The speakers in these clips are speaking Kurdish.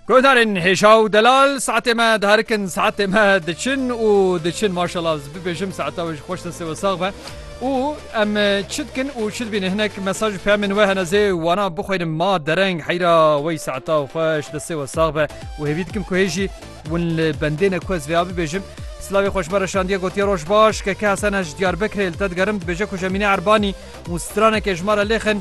Guhdarên hêja û delal saetê me diherikin saetê me diçin û diçin maşala ez bibêjim saeta wê ji xweş destê we sax be û em e, çi dikin û çi dibînin hinek mesaj û peyamên we hene zê wana bixwînim ma dereng heyra wey saeta û xweş destê we sax be û hêvî dikim ku hêjî win li bendê ne ku ez vêya bibêjim Slavê xweşme reşandiye gotiye roj baş keke hesene ji Diyarbekirê li te digerim dibêje ku Jemîne Erbanî Û straneke ji ma re lêxin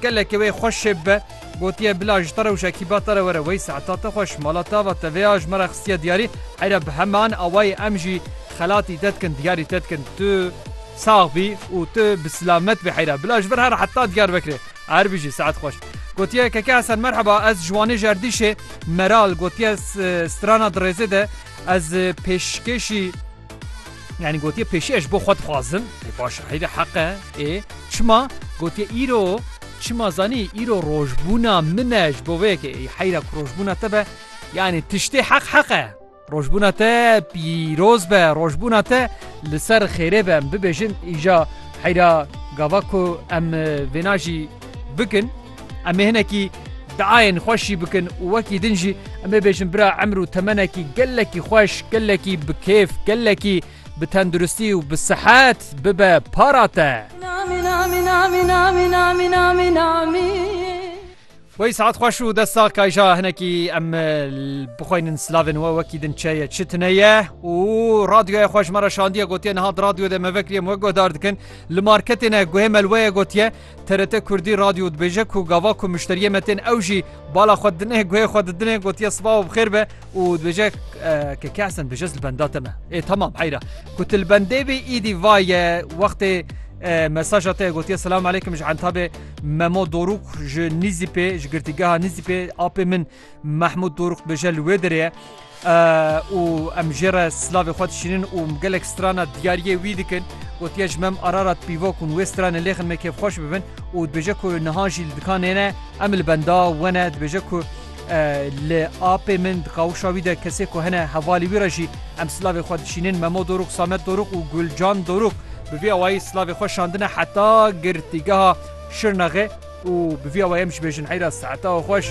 gelekê wê xwe şêb be. Gotiye bila ji te re û ji ekîba te re were wey saeta te xweş, mala te ava te vê ya ji me re xistiye diyarî, heyra bi heme an awayê em jî xelatî te dikin diyarî te dikin. Tu sax bî û tu bi silamet bî heyra, bila ji vir here heta Diyarbekirê. Her bijî saet xweş. Gotiye Keke Hesen merheba ez ji Wanê ji erdîşê Meral gotiye strana di rêzê de ez pêşkêşî. Yanî gotiye pêşî ez ji bo xwe dixwazim ê baş e heyre heq e ê çima gotiye îro çima zanî îro rojbûna min e ji bo vê yekê ê heyra ku rojbûna te be yanî tiştê heq heq e. Rojbûna te pîroz be rojbûna te li ser xêrê be em bibêjin îja heyra gava ku em vêna jî bikin. Em ê hinekî diayên xweş jî bikin û wekî din jî em ê bêjin bira emr û temenekî gelekî xweş, gelekî bi kêf, gelekî bi tenduristî û bi sihet bibe para te. Wey saet xweş û dest sax kayja hinekî em bixweynin silavên we wekî din çeye çi tine ye û radyoya xweş me re şandiye gotiye niha di radyo de me vekiriye me guhdar dikin li marketê ne guhê melweye gotiye TRT Kurdî Radyo dibêje ku gava ku muşteriyê me tên ew jî bala xwe dine guhê xwe didine gotiye siba û bixêr be û dibêje ke ke esen bêje li benda te me. Ê tamam heyra ku tu li bendê bê îdî vaye wextê mesaja te gotiye selam aleykim ji entabê memo dorûk ji nîzîpê ji girtîgeha nîzîpê apê min Mehmûd Dorûx dibêje li wê derê û em jê re silavê xwe dişînin û gelek strana diyariyê wî dikin. Gotiye ji mem Ararat pîvo kun wê stranê lêxin me kêfxweş bibin û dibêje ku niha jî li dikanê ne em li benda we ne dibêje ku li apê min di qawişa wî de kesê ku hene hevalî wî re jî em silavê xwe dişînin Memo Dorûx, Samet Dorûx û Gulcan Dorûx bi vî awayî silavê xwe şandine heta girtîgeha Şirnexê û bi vî awayê em jî bêjin heyra Seetawa xweş.